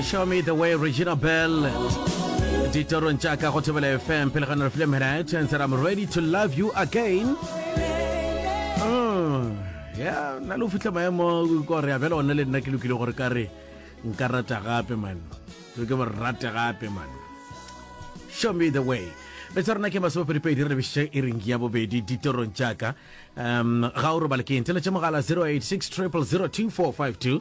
show me the way regina bell ditorong tša ka go thobela fm pele ga ne re file minute and said i'm ready to love you again oh, ya na le go fitlha maemo kore ya bjale one le nna ke lokile gore ka re nka rata gape man ke ke gore rate gape man show me the way betsa rona ke masopedipedi re lebešitše e reng ya bobedi ditorong tšaka um ga o robale ke ntse le tše mogala 086 0002452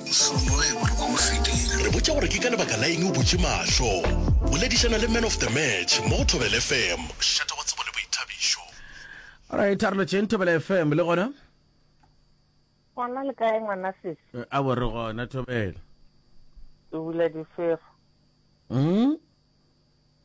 Mohlomongwe o re ko o fetile. Re botša gore ke ka lebaka la eng o butše mahlo. Boledišana le Man of the Match mo go Thobela FM. Šetha wa tsebo le boithabišo. Alright, a re lotšeng Thobela FM le gona. Gona le kae ngwana sesi? Eh, a bo re gona Thobela. Ke bula difefo. Mm?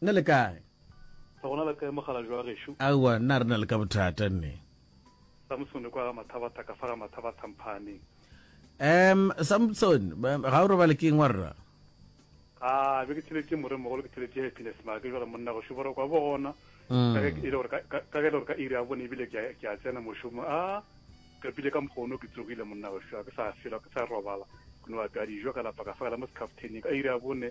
Na le kae? Re gona le kae mokgalajwe wa gešo? Aowa, na re na le ka bothata nne. Samsone kwa ga Mathabatha ka fa ga Mathabatha Mphaaneng. Um, Samsone, ga o robale ke eng wa rra? A, be ke theletše moremogolo, ke theletše Happiness Maake, jwale monna gešo borokwa bo gona, ka ge e le gore ka, ka, ka ge e le gore ka iri ya bone ebile ke a, ke a tsena mošomo. A, ka pile ka mokgwa ono ke tsogile monna gešo, ga ke sa fela, ke sa robala, ke no apea dijo ka lapa ka fa ka la mo sekhafteneng ka iri ya bone.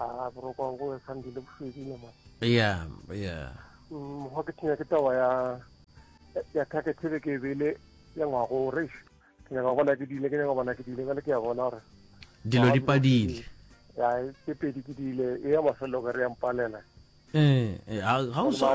a borokwa go sandile bofedi ne mane ya ya mokgwa ke thenya ke taba ya ya thake thebe ke bele ya ngwago re ke nyaka bona ke dile ke nyaka bona ke dile bale ke ya bona gore dilo di padile ya ke pedi ke dile e ya mafelelo ka re ya mpalela eh, eh ga o sa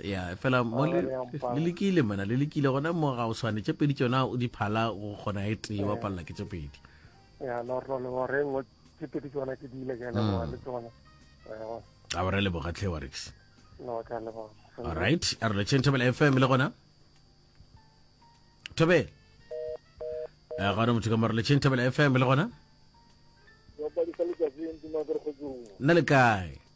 ya fela mo le lekile mona le lekile gona mo ga o swane tše pedi tsona o di phala go kgona e tee wa palela ke tše pedi ya no no no re ngo tše pedi tsona ke dile ke le mm. le tsona a re le bogatlhe wa rix no ka le bona all right a re le chen thabela fm le gona thabela a eh, ga re motho ka mara le chen thabela fm le gona nna le kae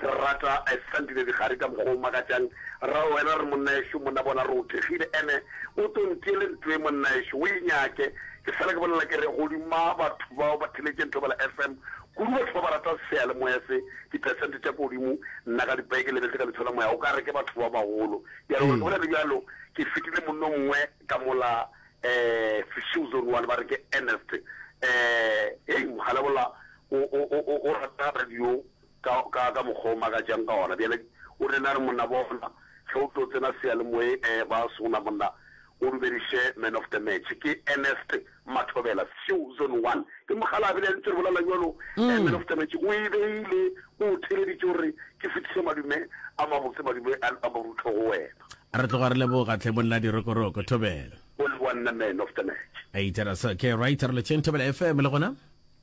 Re rata I sandile digare ka mokgwa o makatšang Rra wena re monnaešo monna bona re o thekgile Ene o tlo ntiele ntoe monnaešo o e nyake Ke fela ke bolela ke re godima batho bao ba theletšeng Thobela FM Kudu batho ba ba ratang seyalemoya se Di percent tša kodimo Nna ka dipaye ke lebetše ka letsho la moya O ka re ke batho ba bagolo Ke a leboga Ke bolela bjalo ke fetile monna o mongwe ka mola um Sešou Zone one ba re ke Ernest um Hei mogala wola o o o o rata radio ka, ka, ka mokgwa o makatšang ka wona. Bjale o rile, a re, Monna, bona, ge o tlo tsena seyalemoyeng, e, ba sona, monna, o dumediše Man of the Match. Ke Ernest Mathobela, Sioux Zone One. Ke mokgalabje, le yena, ntse re bolela bjalo, e, Man of the Match o e beile, o o theeleditše gore ke fetiše madume a mabotse, madume a, a marutho go wena. A re tloga re leboga, hle, monna Dirokoroko, Thobela. O leboga nna Man of the Match. Either so, ke right, re lo tšeng, Thobela FM le gona.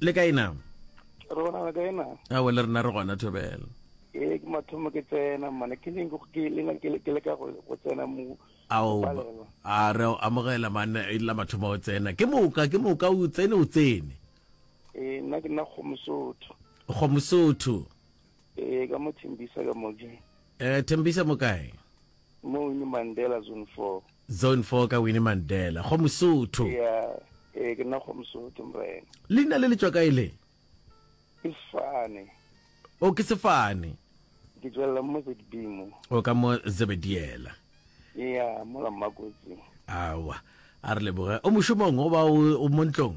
le kae na re gona le kae na awe le rena re gona thobela ee ke mathomo ke tsena mane ke leng ke lena ke le ka go tsena mo ao a re amogela mane e la mathomo o tsena ke moka ke moka o tsene o tsene ee nna ke nna kgomosotho kgomosotho Ee, ka mo Thembisa ka mo ke. Eh, Thembisa mo kae? Mo Winnie Mandela Zone 4. Zone 4 ka Winnie Mandela, go Mosotho. Ya, ee, ke nna go Mosotho mrena. Leina le le tšwa kae le? Ke Sefane. O ke Sefane. Ke tswelela mo Zebedee mo. O ka mo Zebediela. Ya, mola Mmakotsi. Awa, a re leboge. O mošomong goba o o mo ntlong?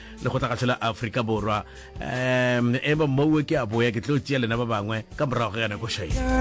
lekgotlakgatsho la afrika borwa um eba mouwe ke a boya ke tlo tšea lena ba bangwe ka morago ga yana ko shaile